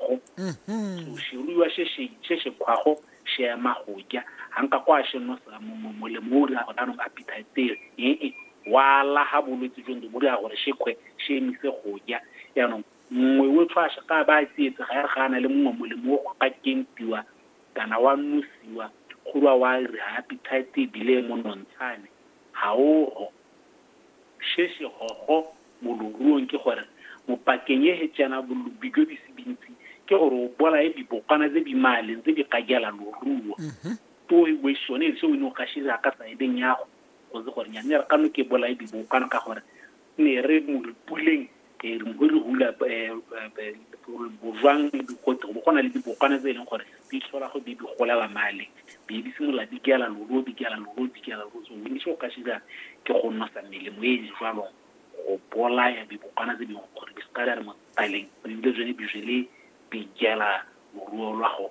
go so seruiwa se se se se kgwago se ema go ja ga nka kwa se no sa mo- mo- molemo o dira gore anong appetite ee wa laga bolwetse jo bo dira gore se kgwe se emise go ja yaanong nngwe o tshwa se ka ba a tsietse ga ya re ga a na le mongwe molemo o go ka kentiwa kana wa nosiwa go rwa wa re appetite ebile e monontshane ga ogo Se se hogo mo loruong ke gore mo pakeng ye he tsena bolubi bjo bisi bintsi ke gore o bolaye bibokwana tse bi maleng tse bi ka jala loruo. Too he we sone se o ne o ka se dira ka saedeng yago go se gore nyane re ka no ke bolaye bibokwana ka gore ne re mo re puleng e re go re hula bojwang go go na le dibokwana tse e leng gore di tlhola go di golela male di di simolola di kela lolo di kela lolo di kela lolo so mme se o ka se dira ke go nosa melemo e e jwalo go bolaya dibokwana tse dingwe gore di se ka di re mo tsaleng ebile tsone di jele di jela moruo lwa go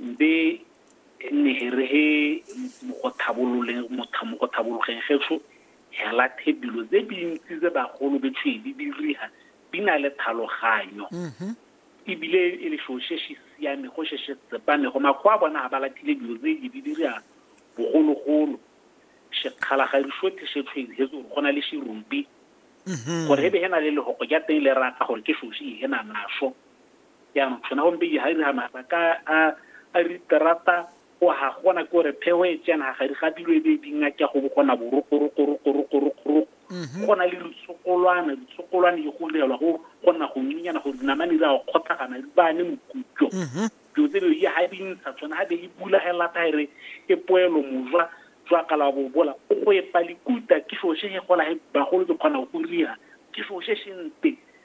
Mbe ne he re he mo go tlhabololeng motha mo go tlhabologeng getsho hela the dilo tse dintsi tse bagolo be tshwe di diriha di na le tlhaloganyo ebile e le sho se se siame go se se tsepame go makgwa a bona ha ba lathile dilo tse di di diriha bogologolo sekgala ga di shothe se tshwe he tso go na le serubi gore e be he na le lehoko ja teng le raka gore ke shoshi he na naso jaanong sona gompe ga iri ga mabaka a a diterata go ga gona ke gore phego e tsena ga ga dilo e be di ngake go bogona borokorokorokorokorokoro mhm. go na le ditshogolwana ditshogolwane e go direlwa go gona go nyenyana gore dinamane di a go kgotlhagana di bane mokutlo mhm. dilo tse dilo ga di ntsha tsone ga be e bula ga e lata ere e poelo mojwa jwa kala wa bobola o go epa likuta ke seo se se gola bagolo di kgona go dira ke seo se sente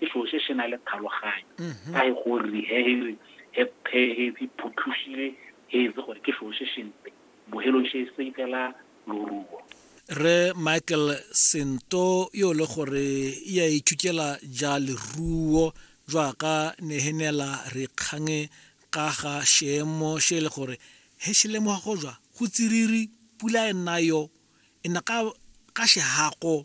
ke selo se se na le tlhaloganyo mhm. ka e gore he e phutlhusile he etse gore ke selo se sempe bohelong se se ikela loruo re michael sento yo le gore ya ithutela ja leruo jwa ka nehenela re kgange ka ga seemo se e le gore he se lemoga go jwa go tsiriri pula e nna yo e na ka ka sehako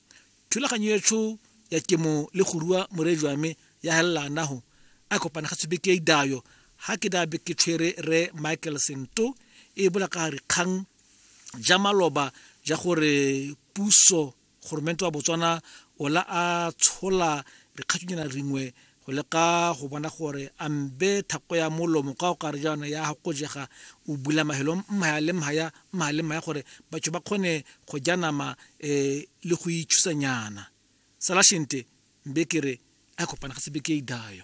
Thulaganyo yetsho ya kemo le go rua more jwa me ya helelana ho a kopana ga tshubeke idayo ha ke dabe ke tshwere re Michael Sento e bola ka re kgang ja maloba ja gore puso goromento wa Botswana ola a tshola dikgathunyana ringwe go leka go bona gore a mbe thako ya molomo ka o kare jaana ya go jega o bula mahelo mmaya le mmaya mmaya le mmaya gore batho ba kgone go ja nama um le go itshusanyana salashente mbe ke re a kopana ga sebe ke e dayo